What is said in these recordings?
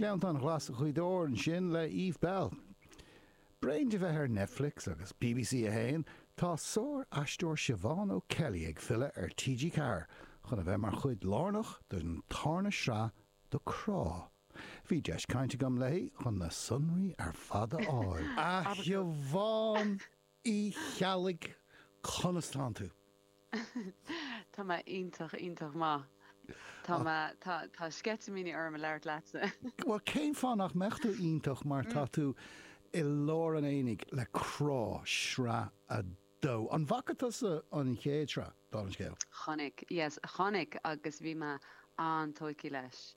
Gleanntáin Ghlas' Ghaoth Dobhair ansin le Eve Belle. Bréan de bheith ar Netflix agus bbc 1, tá sáraisteoir Siobhán O'Kelly ag filleadh ar TG4 chun a bheith mar chuid lárnach den tarna sraith de Crá. Bhí deis cainte agam léi chun na sonraí ar fad a fháil. A Shiobhán! Uí Cheallaigh, Conas tánn tú? Tá mé iontach, iontach maith. Tá mé, tá, tá sceitimíní orm ag labhairt leatsa. Bhuel, cén fáth nach mbeadh tú iontach mar tá tú i lár an aonaigh le Crá, sraith a dó. An bhfaca tusa an chéad sraith? dála an scéil. Chonaic, yes, chonaic agus bhí mé an-tógtha leis,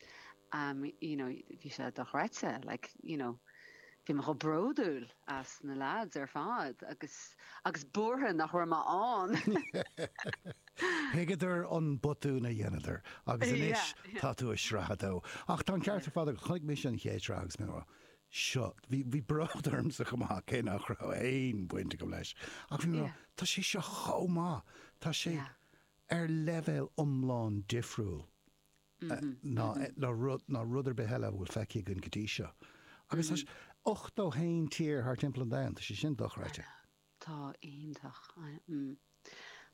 you know, bhí sé dochreidte, like, you know, bhí mé chomh bródúil as na lads ar fad agus, agus buartha nach raibh mé ann. Thuigeadar an botún a dheineadar agus anois tá tú ag sraith a dó. Ach tá an ceart ar fad agat, chonaic mise an chéad sraith agus mé, seo. Bhí bród ormsa chomh maith, cé nach raibh aon bhaint agam leis, ach bhí mé mar, tá sé seo chomh maith, tá sé ar leibhéal iomlán difriúil ná rud ar bith eile a bhfuil feicthe againn go dtí seo. Agus tá 81 tír thar timpeall an domhain, tá sé sin dochreidte. Tá, iontach.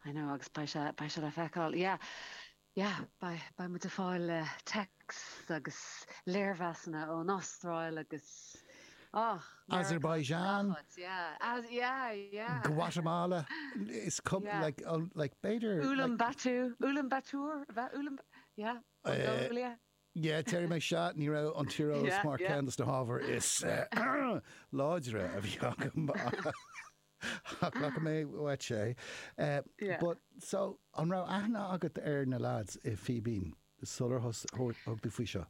I know, agus beidh sé le feiceáil. Yeah, beidh muid ag fáil texts agus léirmheasanna ón Astráil agus, oh, Meiriceá is Azerbaijan. gnáthchuid, yeah, as, yeah, yeah. Guatamala, is cum, Yeah. like, oh, like, b'fhéidir, like, Ulaanbaatar, Ulaanbaatar, a bheith, Ulaanb-, yeah, Mongolia. yeah, déarfaidh mé seo, ní raibh an tíreolas Yeah, mar yeah. ceann dos na hábhair is, eh, láidre a bhí agam. Glacfaidh mé uait é. But so, an raibh aithne agat ar na lads i Fíbín sular thug tú faoi seo?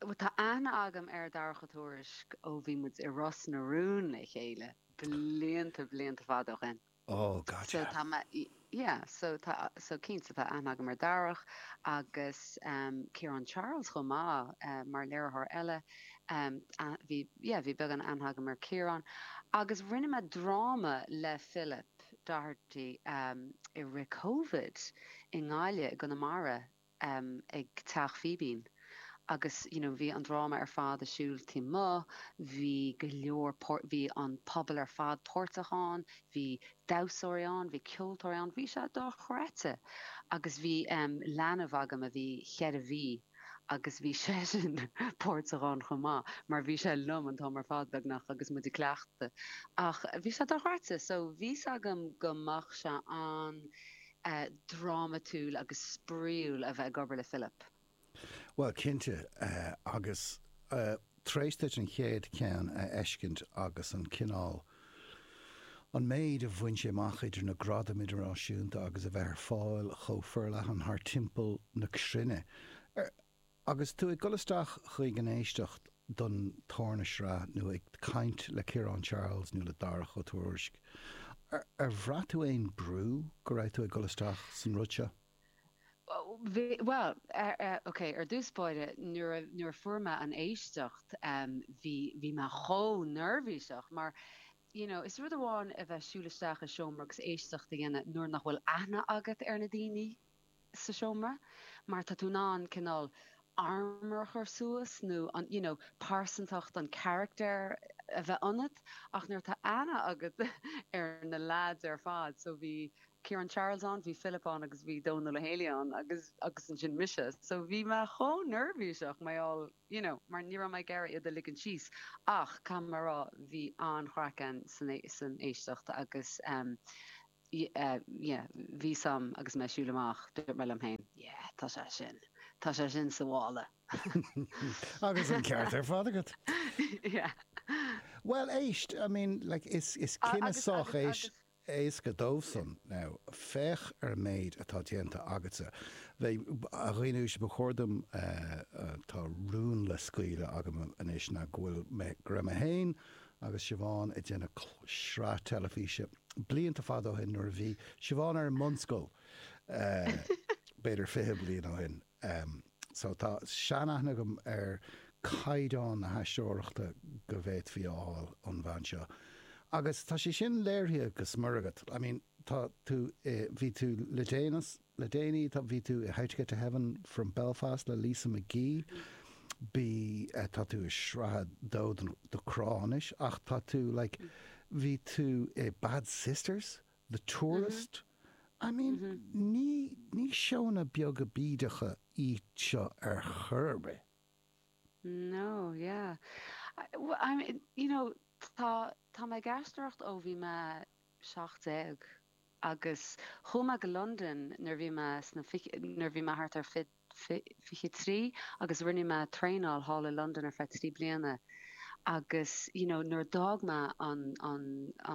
Bhuel, tá aithne agam ar Darach Ó Tuairisg ó bhí muid i Ros na Rún le chéile, blianta, blianta fada ó shin. Oh, gotcha. So, tá mé. Yeah, so tá so cinnte tá aithne agam ar Dharach agus um, Ciarán Charles chomh maith uh, mar léiritheoir eile. Um, a, bhí, yeah, bhí beagán aithne agam ar Ciarán agus rinne mé dráma le Philip Doherty um, i rith Covid i nGaillimh, i gConamara. ag Teach Fíbín agus you know bhí an dráma ar fad a' siúl amuigh, bhí go leor páirt, bhí an pobal ar fad páirteach ann, bhí damhsóirí ann, bhí ceoltóirí ann, bhí sé dochreidte agus bhí em leanbh agam a bhí cheithre mhí agus bhí seisean páirteach ann chomh maith mar bhí sé liom an t-am ar fad beagnach agus muid a' cleachtadh ach bhí sé dochreidte so bhí 's agam go mbeadh sé an-suim a drámatúil agus spraíúil bheith ag obair le Philip. Bhuel, cinnte, agus. tar éis duit an chéad cheann a fheiscint agus an cineál, an méid a bhain sé amach idir na gradaim idirnáisiúnta agus a bheith ar fáil chomh forleathan thar timpeall na cruinne, Agus tú ag dul isteach chuig an éisteacht don tarna sraith, nó ag caint le Ciarán Charles nó le Darach Ó Tuairisg, ar bhraith tú aon brú go raibh tú ag dul isteach san rud seo? Bhuel, ok, ar dtús báire, nuair a fuair mé an éisteacht, bhí mé chomh neirbhíseach, mar you know, is rud amháin a bheith siúl isteach i seomra agus éisteacht a dhéanamh nuair nach bhfuil aithne agat ar na daoine, sa seomra, mar tá tú in ann cineál armour a chur suas nó an you know pearsantacht an charachtair a bheith ionat ach nuair atá aithne agat ar na leaids ar fad so bhí Ciarán Charles ann, bhí Philip ann agus bhí Dónal Ó Héalaí ann agus agus ansin mise so bhí mé chomh neirbhíseach mar gheall you know mar ní raibh mé ag iarraidh iad a ligint síos ach caithfidh mé a rá bhí an-chraic ann san san éisteacht agus ehm yeah, bhí sé am agus mé ag siúl amach, dúirt mé liom féin, yeah, tá sé sin, tá sé sin sa mála. Agus an ceart ar fad agat. yeah. Bhuel, éist, I mean, like, is, is cinneadh sách éasca dóibhsean. Now, féach ar an méid atá déanta agatsa. Bhuel, a dhaoine uaisle, ba chóir dom, eh, tá rún le scaoileadh agam anois ná go bhfuil mé, go raibh mé féin agus Siobhán ag déanamh sraith teilifíse blianta fada ó shin nuair a bhí Siobhán ar an mbunscoil, b'fhéidir fiche bliain ó shin. So tá sean-aithne agam ar chaighdeán na haisteoireachta go bhféadfaí a fháil ón bhean seo. Agus tá sé sin léirithe go smior agat. I mean, tá tú i, bhí tú le déanaí, Le déanaí tá bhí tú i How to Get to Heaven from Belfast le Lisa McGee, bí tá tú i sraith a dó de Crá anois ach tá tú like bhí tú i Bad Sisters, The Tourist, I mean ní ní seónna beaga bídeacha iad seo ar chor ar bith. No, yeah. Bhuel I mean you know tá tá mé ag aisteoireacht ó bhí mé seacht déag. agus chuaigh mé go Londain nuair a bhí mé sna nuair a bhí mé thart ar fiche trí agus rinne mé traenáil thall i Londain ar feadh trí bliana agus you know nuair a d'fhág mé an an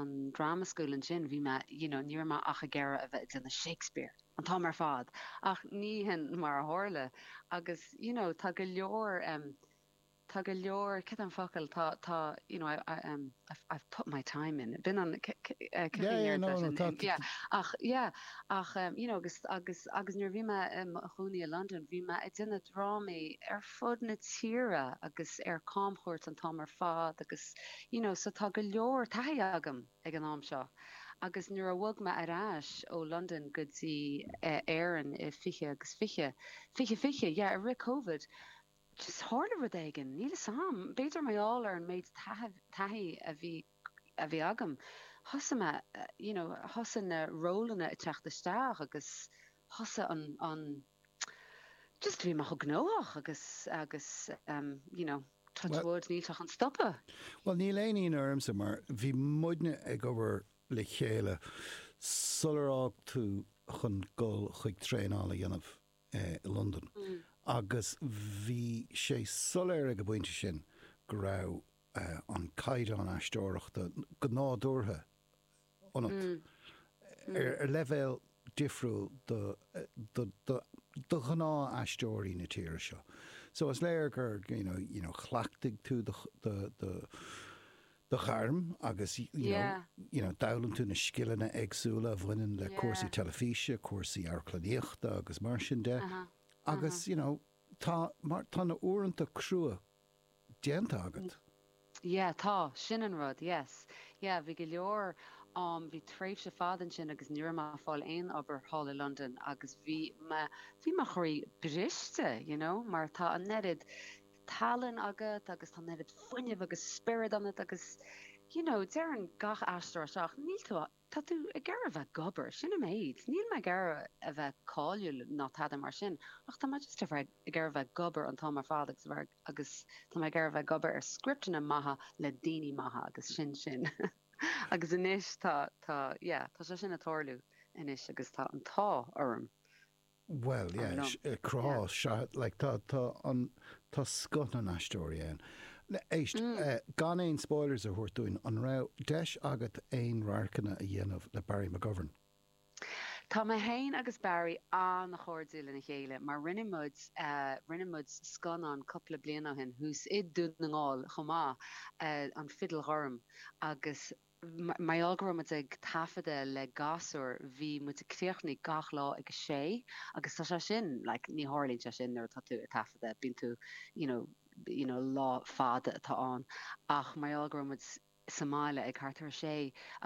an drama school ansin bhí mé you know ní raibh mé ach ag iarraidh a bheith ag déanamh Shakespeare an t-am ar fad ach ní shin mar a tharla agus you know tá go leor em Tá go leor, cén focal, tá, tá, you know, I, I, um, I've, I've put my time in, b'in an, c, c, eh, cad é Yeah, an yeah, aird no, leis no, an, tá, in, tá, yeah, ach, yeah, ach, um, you know, agus, agus, agus nuair a bhí mé i mo chónaí i Londain, bhí mé ag déanamh drámaí ar fud na tíre agus ar camchuairt an t-am ar fad agus, you know, so tá go leor taithí agam ag an am seo. Agus nuair a bhog mé ar ais ó Londain go dtí, eh, Éirinn i 20 agus 20, 20, 20, yeah, i rith Covid, just tharla rud éigin, níl 'fhios a'm, b'fhéidir mar gheall ar an méid taithí a bhí, a bhí agam, thosaigh mé, you know, thosaigh na rólanna ag teacht isteach agus thosaigh an, an, just bhí mé chomh gnóthach agus, agus ehm, you know, touch wood, níl sé chun stopadh. Bhuel níl aon ionadh ormsa mar bhí muidne ag obair le chéile sular fhág tú chun dul chuig traenáil a dhéanamh. i Londain agus bhí sé soiléir ag an bpointe sin go raibh an caighdeán aisteoireachta go nádúrtha ionat, ar leibhéal difriúil do ghnáth-aisteoirí na tíre seo. So is léir gur, you know, chleachtaigh tú do do ghairm agus you know d'fhoghlaim tú na scileanna éagsúla a bhaineann le cúrsaí teilifíse, cúrsaí amharclannaíochta agus mar sin de agus you know tá mar tá na uaireanta crua déanta agat. Yeah tá, sin an rud, yes. Yeah bhí go leor am, bhí tréimhse fada ansin agus ní raibh mé ag fáil aon obair thall i Londain agus bhí mé, bhí mo chroí briste you know mar tá an oiread, tallann agat agus tá an oiread fuinnimh agus spiorad ionat agus you know deireann gach aisteoir é seo níl tú a, tá tú ag iarraidh a bheith ag obair, sin an méid, níl mé ag iarraidh a bheith cáiliúil ná tada mar sin ach tá mé just ag iarraidh a bheith ag obair an t-am ar fad agus a bheith ag, agus tá mé ag iarraidh a bheith ag obair ar scripteanna maithe le daoine maithe agus sin sin agus anois tá, tá yeah tá sé sin ag tarlú anois agus tá an t-ádh orm. Bhuel, yeah, Crá, sea, like tá an, tá scoth na n-aisteoirí ann. Éist, gan aon spoilers a thabhairt dúinn, an raibh deis agat aon radharcanna a dhéanamh le Barry McGovern? Tá mé féin agus Barry an-chairdiúil lena chéile mar rinne muid, rinne muid scannán cupla bliain ó shin thuas i Dún na nGall chomh maith, An Fidil Ghorm agus. Mar gheall go raibh muid ag taifeadadh le gasúir, bhí muid ag críochnú gach lá ag a sé agus tá sé sin like ní tharlaíonn sé sin nuair atá tú ag taifeadadh, bíonn tú you know you know lá fada atá ann ach mar gheall go raibh muid sa mbaile ag thart ar a sé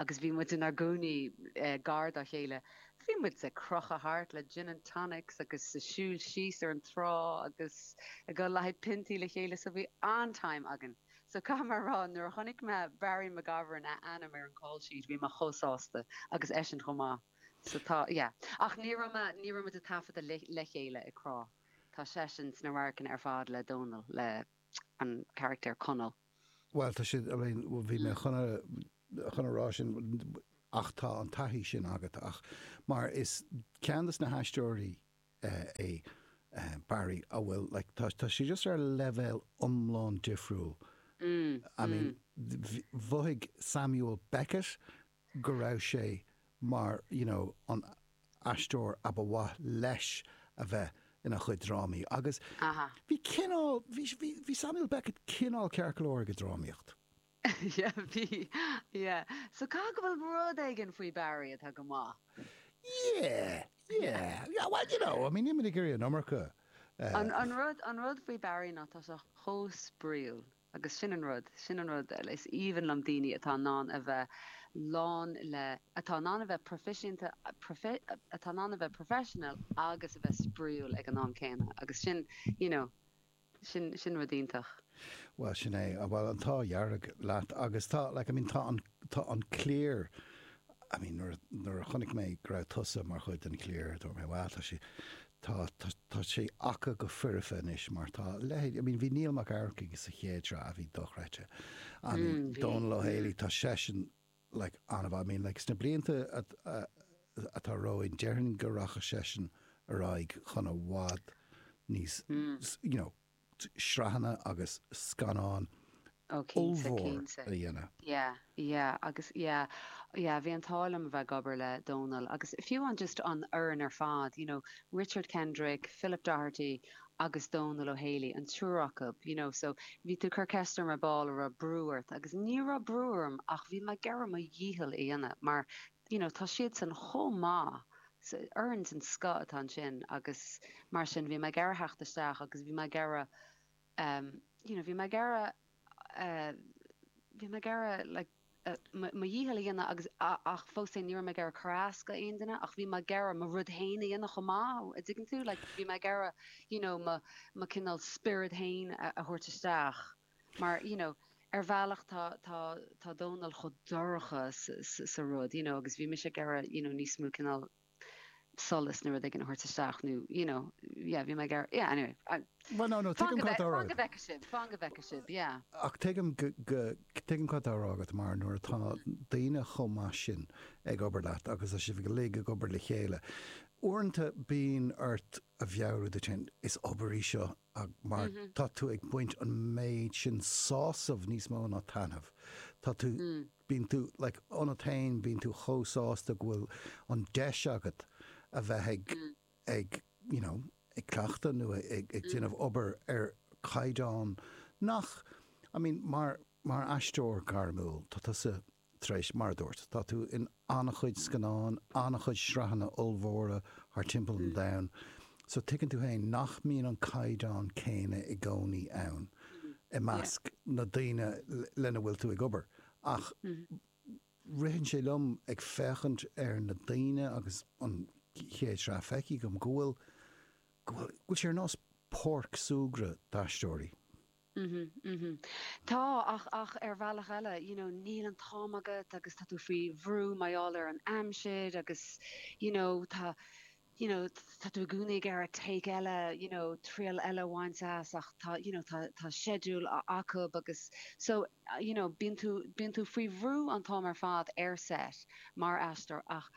agus bhí muid inár gcónaí gar dá chéile, bhí muid ag crochadh thart le gin and tonics agus ag siúl síos ar an trá agus ag dul le haghaidh piontaí le chéile so bhí an-time againn. So caithfidh mé a rá, nuair a chonaic mé Barry McGovern a ainm ar an call sheet, bhí mé chomh sásta, agus eisean chomh maith. So tá, yeah. Ach ní raibh mé, ní raibh muid ag taifeadadh le, le chéile i gCrá. Tá seisean sna radharcanna ar fad le Dónal, le an charachtar Conall. Bhuel, tá siad, I mean, bhí mé chun a, chun a rá sin, ach tá an taithí sin agat, ach, mar is, ceann de na haisteoirí, é Barry a bhfuil like tá tá sé just ar leibhéal iomlán difriúil I mean mhothaigh Samuel Beckett go raibh sé mar you know an t-aisteoir a ba mhaith leis a bheith ina chuid drámaí agus bhí cineál bhí bhí Samuel Beckett cineál ceart go leor ag an drámaíocht Yeah, bhí, yeah. So caithfidh go bhfuil rud éigin faoi Barry atá go maith. Yeah, yeah. Yeah, well, you know, I mean, níl mé ag iarraidh an iomarca. An, an rud, an rud faoi Barry ná tá sé chomh spraíúil agus sin an rud, sin an rud, is aoibhinn liom daoine atá in ann a bheith lán le, atá in ann a bheith proificienta, profe, atá in ann a bheith professional agus a bheith spraíúil ag an am céanna agus sin, you know, Sin, sin rud iontach. Bhuel, sin é. Bhuel, an t-ádh dearg leat. Agus tá, like, I mean, tá an, tá an cliar, I mean, nuair a, nuair a chonaic mé go raibh tusa mar chuid den chliar, dúirt mé, wow, tá sé, tá, tá, tá sé acu go foirfe anois, mar tá a leithéid, I mean, bhí Niall Mac Eachmharcaigh sa chéad tsraith a bhí dochreidte. I mean, Dónal Ó Héalaí, tá seisean like, an-mhaith, I mean, like, sna blianta atá romhainn, déarfainn go rachaidh seisean ar aghaidh chun i bhfad níos, you know, sraitheanna agus scannáin ollmhór a dhéanamh. Yeah, yeah, agus, yeah, yeah, bhí an t-ádh liom a bheith ag obair le Dónal agus fiú an just an fhoireann ar fad, you know, Richard Kendrick, Philip Doherty, agus Dónal Ó Héalaí, an triúr acu, you know so bhí tú ag cur ceist orm ar ball a' raibh brú ort agus ní raibh brú orm ach bhí mé ag iarraidh mo dhícheall a dhéanamh mar you know tá siadsan chomh maith so foireann den scoth atá ansin agus mar sin bhí mé ag iarraidh theacht isteach agus bhí mé ag iarraidh ehm you know bhí mé ag iarraidh Bhí mé ag iarraidh like mo dhícheall a dhéanamh agus ach fós féin ní raibh mé ag iarraidh cur as d'aon duine ach bhí mé ag iarraidh mo rud féin a dhéanamh chomh maith a' dtuigeann tú? Like bhí mé ag iarraidh you know mo mo cineál spiorad féin a thabhairt isteach mar you know ar bhealach tá tá tá Dónall chomh dorcha sa sa rud you know agus bhí mise ag iarraidh you know níos mó cineál solas nó rud éigin a thabhairt isteach nó you know yeah bhí mé ag iarraidh yeah anyway Bhuel ná nó tuigim cad fá nach mbeadh sibh, fá nach mbeadh sibh yeah. Ach tuigim go tuigim cad atá á rá agat mar nuair atá daoine chomh maith sin ag obair leat agus tá sibh go léir ag obair le chéile uaireanta bíonn ort a mheabhrú duit féin is obair í seo Ah mar tá tú ag baint an méid sin sásamh níos mó ná taitneamh. Tá tú, bíonn tú like ionat féin, bíonn tú chomh sásta go bhfuil an deis agat a bheith ag ag you know ag cleachtadh nó ag ag déanamh obair ar chaighdeán nach I mean mar mar aisteoir gairmiúil tá tusa Tar éis, mar a dúirt, tá tú in an-chuid scannán, an-chuid sraitheanna ollmhóra thar timpeall an domhain, so tuigeann tú féin nach mbíonn an caighdeán céanna i gcónaí ann i measc na ndaoine lena bhfuil tú ag obair. Ach ritheann sé liom, ag féachaint ar na daoine agus an chéad sraith feicthe agam, go bhfuil, go bhfuil, go bhfuil sé ar nós páirc súgartha d'aisteoirí. mhm, mhm. Tá, ach, ach ar bhealach eile, you know, níl an t-am agat agus tá tú faoi bhrú mar gheall ar an aimsir agus, you know, tá, you know, tá tú i gcónaí ag iarraidh take eile, you know, triail eile a bhaint as ach tá, you know, tá, tá schedule a- acub agus so, you know, bíonn tú, bíonn tú faoi bhrú an t-am ar fad ar set mar aisteoir ach,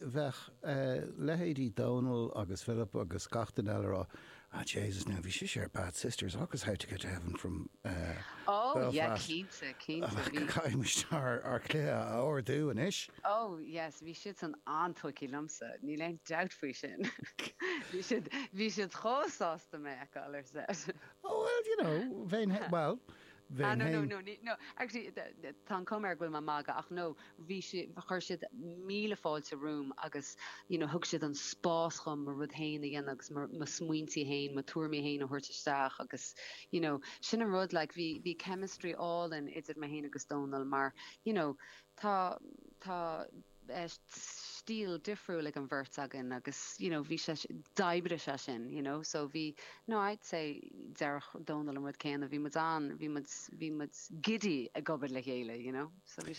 bheadh leithéidí Dónall agus Philip agus gach duine eile ag rá Ah, Jaysus now, bhí sise ar Bad Sisters agus How to Get to Heaven from Ó, yeah, Belfast. cinnte, cinnte, bhí. Caithfidh muid ár chluiche a ardú anois! Ó, yes, bhí siadsan an-tógtha liomsa, níl aon dabht faoi sin. Bhí siad, bhí siad chomh sásta mé a fheiceáil ar set. Oh, well, you know, bheinn, bhuel, bheinn no, no, féin. no, ní, no, actually, tá an chuma air go bhfuil mé ag magadh ach no, bhí si, chuir siad míle fáilte romham agus you know thug siad an spás dhom mo rud fhéin a dhéanamh agus mo, mo smaointe fhéin, mo thuairimí fhéin a thabhairt isteach agus you know sin an rud like bhí, bhí chemistry álainn idir mé fhéin agus Dónall mar you know tá, tá. stíl difriúil ag an bheirt againn agus you know bhí sé, d'oibrigh sé sin you know so bhí no I'd say déarfadh Dónall an rud céanna bhí muid an-, bhí muid, bhí muid giddy ag obair le chéile you know so bhí sé.